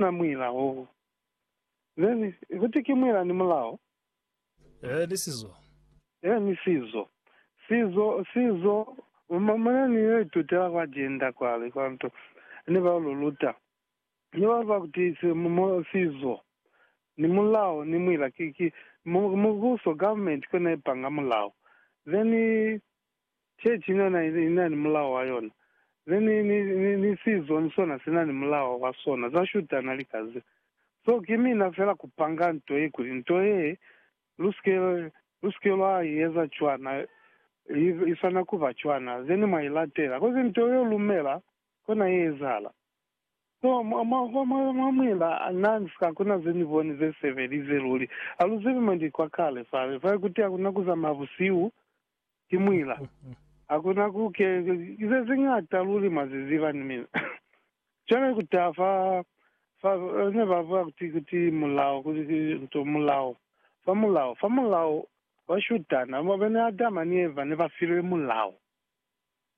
na muila hoo. Then kuti ki muila ni mulao. Ee ni sizo. Ee ni sizo. Sizo, sizo, ma, mane ni yo itutela kwa Jenda kwale, kwa nto, ne ba yo lu luta. Ne ba ba kuti si, mo, sizo, ni mulao, ni muila, ki, ki, mu, mubuso, government, kone ipanga mulao. Then, Chechi niyona inani mulao wa yona, ni, ni, ni, ni, ni sizo ni sona sinani mulao wa sona, za shutana lika ze. So, ki mina fela kupanga nto ye, kuli nto ye, lusike, lusike lwa ieza cwana, i, i swana kuba cwana, zeni mwa ilatela. Kozi nto ye lumela, kona ye ezahala. So, mwa, mwa, mwa, mwa, mwa muina Nance, hakuna ze ni boni ze sebelize luli. Ha lu zibi mo ndi kwa kale fale, fale, kuti hakuna kuzamaya busihu, Ki mwila. Hakuna ku ke, ize ziñata luli mwa zi ziba ni mina. Cwale ku taha fa, fa, ne ba bua kuti, kuti mulao, kuti ki nto, mulao, fa mulao, fa mulao wa shutana. Mwabona, Adama ni Eva ne ba filwe mulao.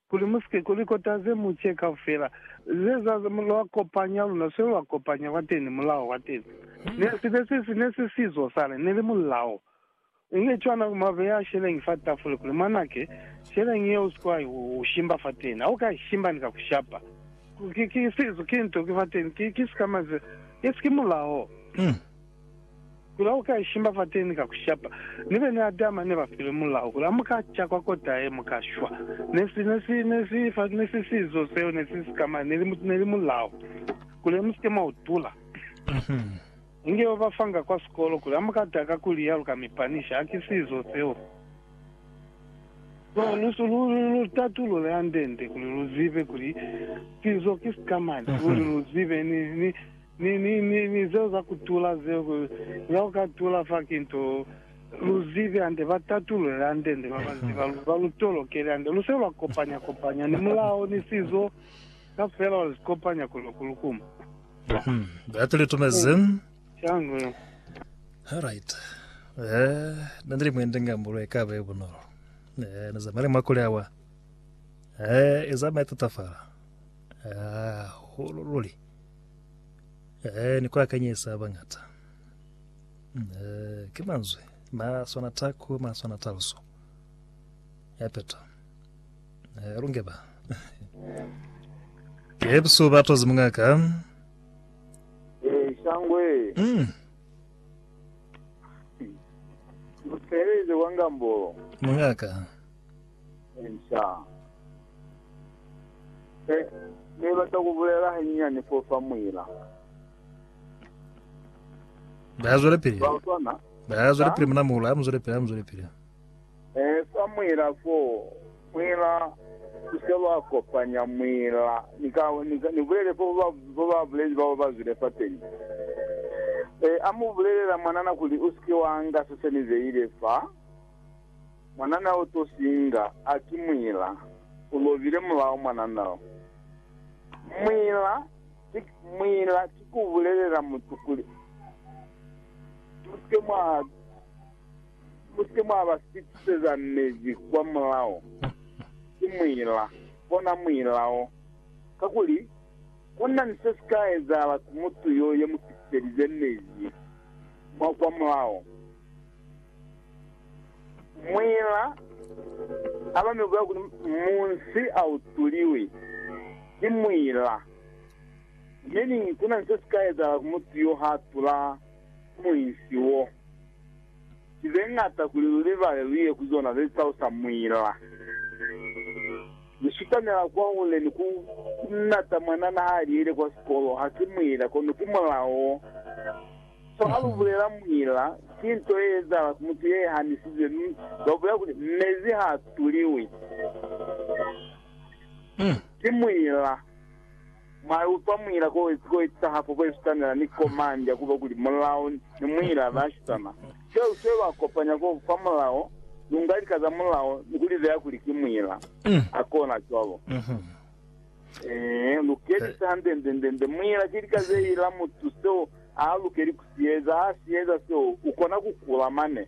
Kuli musike kuli kota ze muce kaufela ze za lwa kopanya luna swe lwa kopanya kwateni mulao kwateni ne sibe se si ne se sizo sale neli mulao inge cwana kuma beya sheleñi fa tafule kuli mwanake sheleñi ye usike wa u shimba fateni au ka ishimba ni ka kushapa ki ki sizo ki nto ki fateni ki ki sikama ze isi ki mulao. Mulao uka ishimba fateni ka kushapa. Ni bene Adama ne ba filwe mulao kuli ha muka ca kwa kota ye, mu ka shwa. Ne si, ne si, ne si, fa, ne si sizo seo, ne si sikama, ne li, ne li mulao kuli he musike mwa utula. Inge yo ba fanga kwa sikolo kuli ha muka taka kuli ya lu ka mi panisha. Ha ki sizo seo. So, lu, lu, lu, lu tatulule hande-nde kuli lu zibe kuli sizo ki sikamani, kuli lu zibe, ni, ni, Ni, ni, ni, ni zeo za kutula zeo, ku, za kukatula fa ki nto, lu zibe hande, ba tatulule hande, nde ba ba ziba, lu, ba lu tolokele hande. Lu se lwa kopanya, kopanya, ni mulao, ni sizo, kafela wa zikopanya kuli ku lukuma. Mhm. Batu li tumezi. Changu. Alright. Eh, na ndili mwende ngambulo ekaba e bunolo. Eh, na zamale makule awa. Eh, ezama etatafala. Ah, hulululi. Eh, ni ku akanyisa ba bañata. Eh, ki manzwi ma swana taku, ma swana taluso ya peto. Eh, lunge ba. Ke bisu ba tozi mungaka. Eh, shangwe. Mm. Muteleze wa ngambo. Mungaka. Answer. He, ne bata ku bulela hanyinyani fo fa muila. Ba zwele pili. Ba utwa na? Ba zwele pili muna muula, mu zwele pili, mu zwele pili. Eh, fa muila fo, muila ku se lwa kopanya muila. Ni ka, ni ka, ni bulele fo ba, fo ba bulezi bao ba zwile fa teñi. Eh, amu bulelela mwanana kuli, Usike wa nga se se ni beile fa. Mwanana o to singa a ki mwila u lobile mulao mwanana o. Mwila ki mwila ki ku bulelela mutu kuli, Mu si ke mwa, mu si ke mwa ba sipse za mezi kwa mulao. Ki mwila, kona mwila o. Kakuli, ku na ni se si ka ezahala ku mutu yo ye mu sipselize mezi mwa kwa mulao. Muñ'a abami ubulela kuli, Munsi autuliwi ki muñ'a. Meaning, kuna ni sesika ezahala ku mutu yo haatula ku muinsi wo. Ki zeñata kuli lulibale luye ku zona zetalusa muñ'a. Lusutamela kwahule ni ku nata mwanana haaliyile kwa sikolo, haki muñ'a kono ki mulao. Fa ha lu bulela muila, ki nto ye ezahala ku mutu ye hanisizwe, mi lwa bulela kuli, Mezi ha a tuliwi. Ki muila. Mwa utwa muila ko wezi ko etaha fa bo Esutanela ni ko Mandia ku ba kuli mulao ni muila ba shisana. Seo se lwa kopanya ko fa mulao, lu nga lika za mulao ni ku li beya kuli ki muila. Ha kona cwalo. Ee, lukelisa hande-nde-nde-nde. Muila ki lika ze ila mutu seo a lukeli ku si eza. Ha si eza seo, u kona ku kula mane.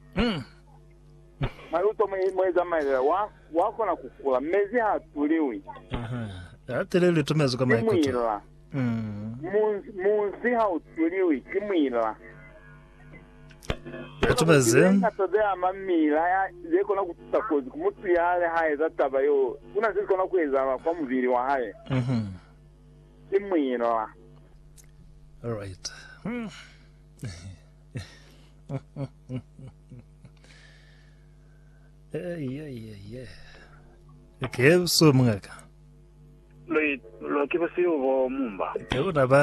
Mwa utwa mwe za malela? Wa, wa kona ku kula. Mezi ha tuliwi. Ha teleli litumezwi ka maikuto. Ki muila. Munzi, munzi ha u tuliwi. Ki muila. Batu ba ze. Kuli linga sa ze ama mila ya ze kona ku tusa kozi ku mutu ya li ha eza taba yeo, ku na ze kona ku ezahala kwa mubili wa hae. Mhm. Ki muinla. Alright. Ei, ei, ei, ei. Ke buso mungaka. Lo, lo ki busihu bo mumba. Ke una ba.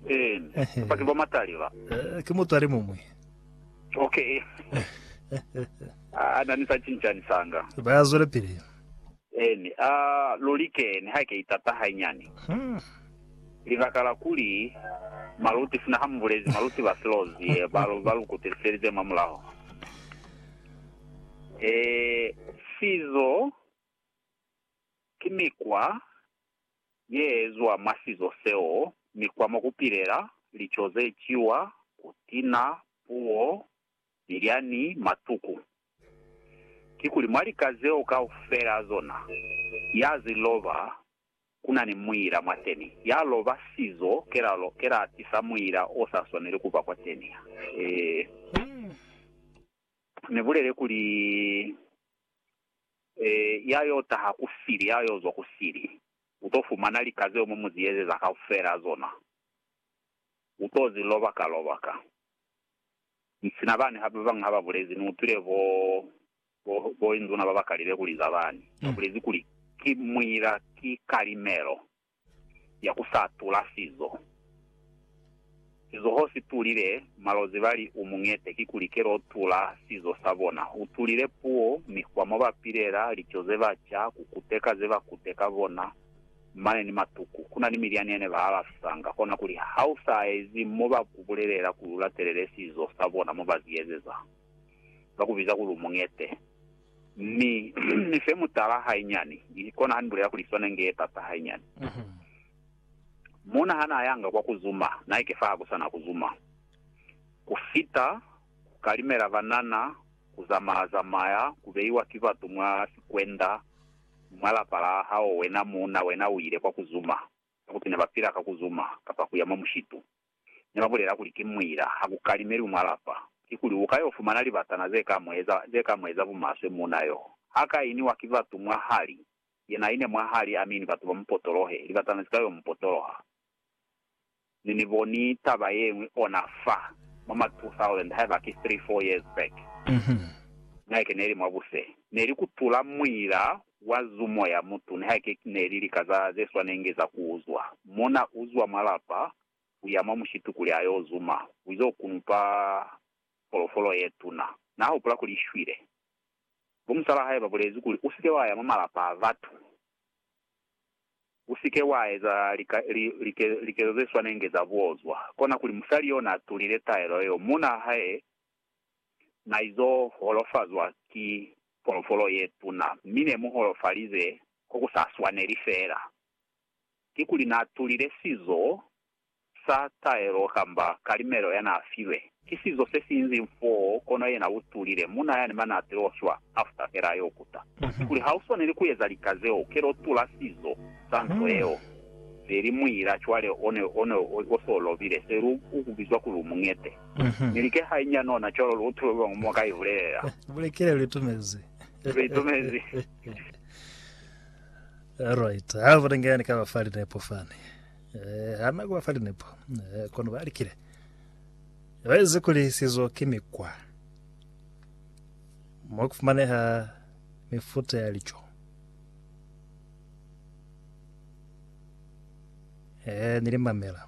Eeny. Kapa ki bomatali ba. Eh, ki mutu ali muñwi. Ok. Ah, na ni sa cincani sanga. Ba ya zwelepili. Eeny. Ah, luli ke, ni ha ke itata hainyani. Hmm. Libaka la kuli, maluti, sina ha mu bulezi, maluti ba silozi, eh, ba, ba lu kutiselize mwa mulaho. Eh, sizo ki mikwa. ye ezwa mwa sizo seo ni kwa mo ku pilela, lico ze ciwa, kutina, puo, milyani, matuku. Kikuli mwa lika zeo kaufela zona, ya zi loba ku na ni muila mwateni, ya loba sizo kelalo ke la tisa muila o sa swaneli ku ba kwateni. Ee, ni bulele kuli Ya yo taha ku sili, ya yo zwa ku sili, u to fumana lika zeo mu mu zi ezeza kaufela zona. U to zi loba ka lobaka. Mi sina bani hape ba bañwi ha ba bulezi, ni utwile bo, bo, bo inzuna ba ba kalile kuli za bani, ba bulezi kuli, Ki muila, ki kalimelo. ya ku sa tula sizo. Sizoho si tulile malozi bali u muñete kikuli kelo u tula sizo sa bona. U tulile puo, mikwa mo ba pilela, lico ze ba ca, ku kuteka ze ba kuteka bona, mane ni matuku. Ku na ni milyani yene ba alafisanga kona kuli ha u sa ezi mo ba ku bulelela kuli u latelele sizo sa bona mo ba ziezeza, ba ku biza kuli u muñete. Ni, ni fe mutala hainyani, kona ha Ni bulela kuli swana inge ye pasa hainyani. Muuna ha na yanga kwa ku zuma, na ike fa ha ku sa na ku zuma. Ku fita, ku kalimela banana, ku zamaya-zamaya, ku beiwa ki batu mwa sikwenda, mwa lapa la hao wena muuna, wena u ile kwa ku zuma, kakuti ne ba pila ka ku zuma, kapa ku ya mwa mushitu. ne ba bulela kuli ki muila, ha ku kalimeli mwa lapa, kikuli u ka yo fumana libatana ze ka mu eza, ze ka mu eza bumaswe muuna yo. Ha ka iniwa ki batu mwahali, yena ine mwahali, amini batu ba mu potolohe, libatana zika yo mu potoloha. Ne ni boni taba yeñwi ona fa, mwa ma 2000, haiba ki three, four years back, ngai ke neli mwa buse, neli kutula muila Wa zu moya mutu niha ke neli lika za ze swanenge za ku uzwa. Mona u zwa mwa lapa, u ya mwa mushitu kuli a yo zuma, u izo kunupa folofolo ye tuna. Na hupula kuli i shwile. Bo musala hae ba bulezi kuli, U si ke wa ya mwa malapa a batu. U si ke wa eza lika, li, like, likezo ze swanenge za buozwa. Kona kuli musali yo n'a tulile taelo yeo. Muuna hae na izo holofazwa ki folofolo ye tuna, mi ne mu holofalize ko ku sa swaneli fela. Kikuli na tulile sizo sa taelo kamba kalimelo ya na filwe? Ki sizo se si inzing foo, kono yena u tulile, muna yani mane a tilo shwa after fela a yo kuta. Kikuli ha u swaneli ku eza lika zeo, ke lo tula sizo sa nto yeo. Feli muila cwale o ne o ne o se o lobile, feli u ku bizwa kuli u muñete. Ni like hai nya nona cwalo lu utulwe kuli muñwi ka i bulelela. Bulekele lu itumezi. Lu itumezi. Alright. Ha vole nge ni ka ba fa linepo fani. Eh, ha na ku ba fa linepo. Eh, kono ba likile. Ba ize kuli sizo ki mikwa. Mo ku fumaneha mifuta ya lico. Eh, ni limamela.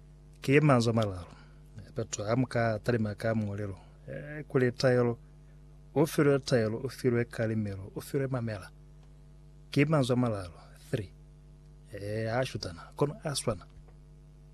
Ki ye manzwi a malalu batu ha mu ka talima ka muulelo, kuli taelo, u filwe taelo, u filwe kalimelo, u filwe mamela. Ki manzwi a malalu, three. Ee, ha shutana, kono a swana.